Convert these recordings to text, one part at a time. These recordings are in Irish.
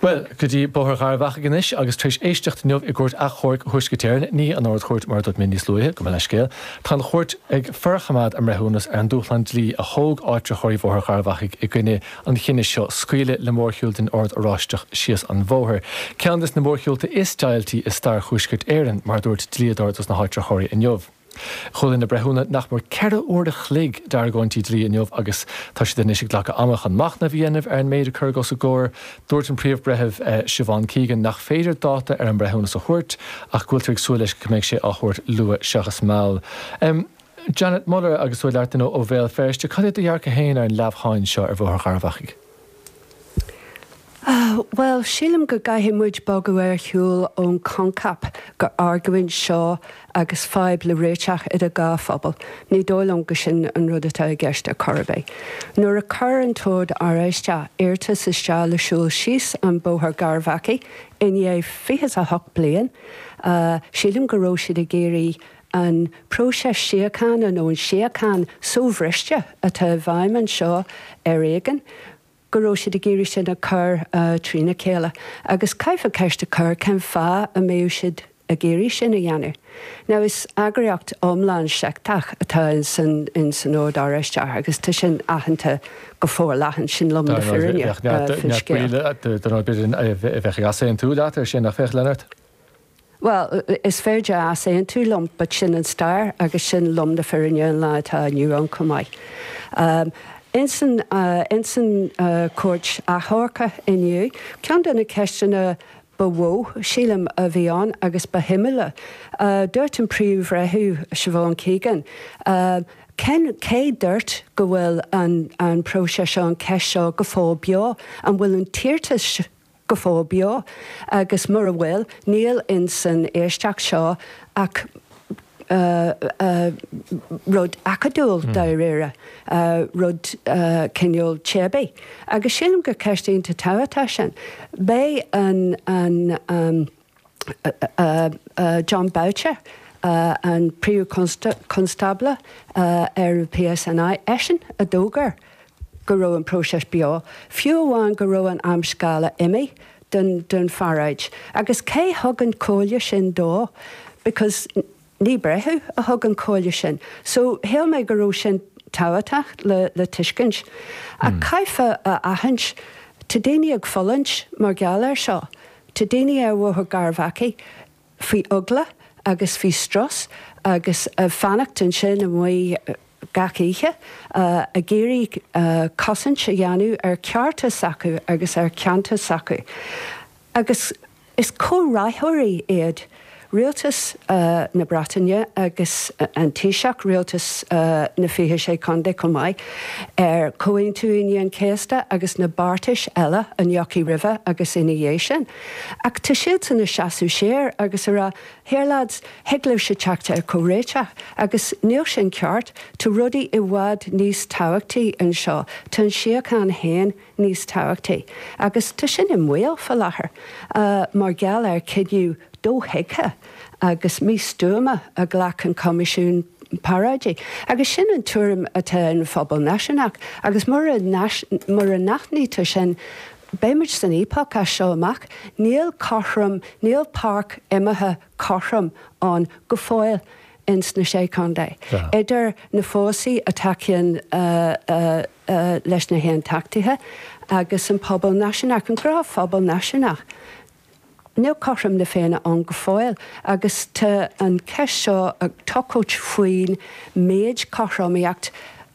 Bhuel, go dtí Bóthar Gharbh Achaidh anois, agus tar éis éisteacht inniu i gCúirt Achomhairc Thuaisceart Éireann, ní an Ard-Chúirt mar a dúirt mé níos luaithe go mba leithscéal, tá an Chúirt ag forchoimeád a mbreithiúnas ar an dúshlán dlí a thóg áitritheoirí Bhóthar Gharbh Achaidh i gcoinne an chinnidh seo scaoileadh le mórshiúl den Ord Oráisteach síos an bhóthar, ceann des na mórshiúlta is deighiltí i stair Thuaisceart Éireann, mar a dúirt dlíodóir dos na háitritheoirí inniu. Chuala na breithiúna nach mór ceithre uair an chloig d'argóintí dlí inniu agus tá siad anois ag glacadh ama chun machnamh a dhéanamh ar an méid a cuireadh os a gcomhair. Dúirt an Príomh-Bhreitheamh Siobhan Keegan nach féidir dáta ar an mbreithiúnas a thabhairt ach go bhfuiltear ag súil leis go mbeidh sé á thabhairt luath seachas mall. Janet Muller, agus tú ag labhairt linn ó Bhéal Feirste, cad é do dhearcadh féin ar an leamhsháinn seo ar Bhóthar Gharbh Achaidh? Bhuel, sílim go gcaithfidh muid bogadh ar shiúl ón choincheap gur argóint seo agus fadhb le réiteach idir dhá phobal. Ní dóigh liom go sin an rud atá i gceist ar chor ar bith. Nuair a chuir an tOrd Oráisteach iarrtas isteach le siúl síos an Bóthar Garbh Achaidh i ndiaidh fiche's a hocht bliain, sílim go raibh siad ag iarraidh An próiseas síochána, nó an tsíocháin so-bhriste atá i bhfeidhm anseo ar éigean, go raibh siad ag iarraidh sin a chur trína chéile. Agus caithfear ceist a chur, cén fáth a mbeadh siad ag iarraidh sin a dhéanamh? Now is eagraíocht iomlán seicteach atá insan Ord Oráisteach agus tá sin aitheanta go forleathan, sin lom na fírinne faoin scéal. Dar ndóigh, is féidir easaontú leat ar sin, nach féidir, Janet? Bhuel, is féidir easaontú liom, but sin an stair agus sin lom na fírinne an lá atá inniu ann chomh maith. Ins an Chúirt Achomhairc inniu, ceann de na ceisteanna ba mhó, sílim, a bhí ann, agus ba shuimiúla, dúirt an Príomh-Bhreitheamh, Siobhan Keegan, cé dúirt go bhfuil an próiseas seo, an cheist seo go fóill beo, an bhfuil an t-iarrtas. go fóill beo, agus mura bhfuil, níl insan éisteacht seo ach rud acadúil, dáiríre, rud cineál teibí. Agus sílim gur ceist iontach tábhachtach sin. Beidh an. Jon Boutcher, an Príomh-Chonstábla ar an PSNI, eisean a d'fhógair go raibh an próiseas beo, fiú amháin go raibh an amscála imithe den pharáid. Agus cé thug an chomhairle sin dó? Because. Ní breitheamh a thug an comhairle sin, so shaoil mé go raibh sin tábhachtach le tuiscint. Ach caithfeá a aithint, tá daoine ag fulaingt mar gheall air seo. Tá daoine ar Bhóthar Garbh Achaidh faoi eagla agus faoi strus agus ag fanacht ansin amuigh gach oíche ag iarraidh cosaint a dhéanamh ar cearta s'acu agus ar cheantar s'acu. Agus. Is comhráthóirí iad Rialtas na Breataine agus an Taoiseach, Rialtas na 26 Contae chomh maith, ar Chomhaontú Aoine an Chéasta agus na beartais eile a ndeachaigh roimhe agus ina dhiaidh sin. Ach tá siadsan ag seasamh siar agus ag rá, here lads, thig libhse teacht ar chomhréiteach. Agus níl sin ceart. Tá rudaí i bhfad níos tábhachtaí anseo. Tá an tsíocháin féin. níos tábhachtaí agus tá sin i mbaol fá láthair mar gheall ar chinneadh dothuigthe agus místuama a ghlac an Coimisiún Paráidí agus sin an tuairim atá i measc an phobail náisiúnaigh agus mura mura n-aithnítear sin beidh muid san fhaopach as seo amach. Níl cothrom, níl páirc imeartha cothrom ann go fóill ins na Sé Chondae, idir na fórsaí a thacaíonn leis na hAontachtaithe agus an pobal náisiúnach. I gcomhair an phobal náisiúnach, níl cothrom na Féinne ann go fóill agus tá an cheist seo ag tochailt faoin méid cothromaíocht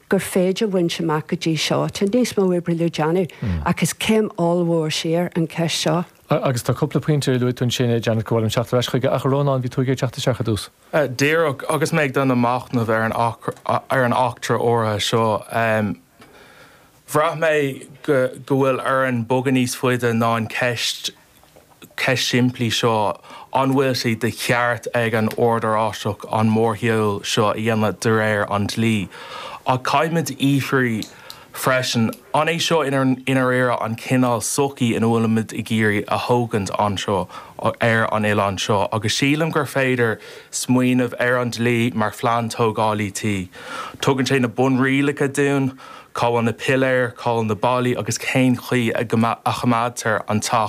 gur féidir bhaint amach go dtí seo. Tá níos mó oibre le déanamh ach is céim ollmhór siar an cheist seo. A, agus tá cúpla pointe ar luaigh tú ansin, a Janet, go bhfuilim ag iarraidh teacht ar ais chuige. Ach, a Rónáin, bhí tú ag iarraidh teacht isteach ar dtús. A, díreach. Agus mé ag déanamh machnamh ar an, ar an eachtra áirithe seo, em, bhraith mé go, go bhfuil orainn bogadh níos faide ná an cheist, cheist shimplí seo, an bhfuil sé de cheart ag an Ord Oráisteach an mórshiúl seo a dhéanamh de réir an dlí. Ach caithfimid a fhiafraí. freisin. An é seo i ndáiríre an cineál sochaí a bhfuilimid ag iarraidh a thógaint anseo ar an oileán seo? Agus sílim gur féidir smaoineamh ar an dlí mar phlean tógála tí. Tugann sé na bunrialacha dúinn, cá bhfuil na piléir, cá bhfuil na ballaí agus cén chaoi a choimeádtar an teach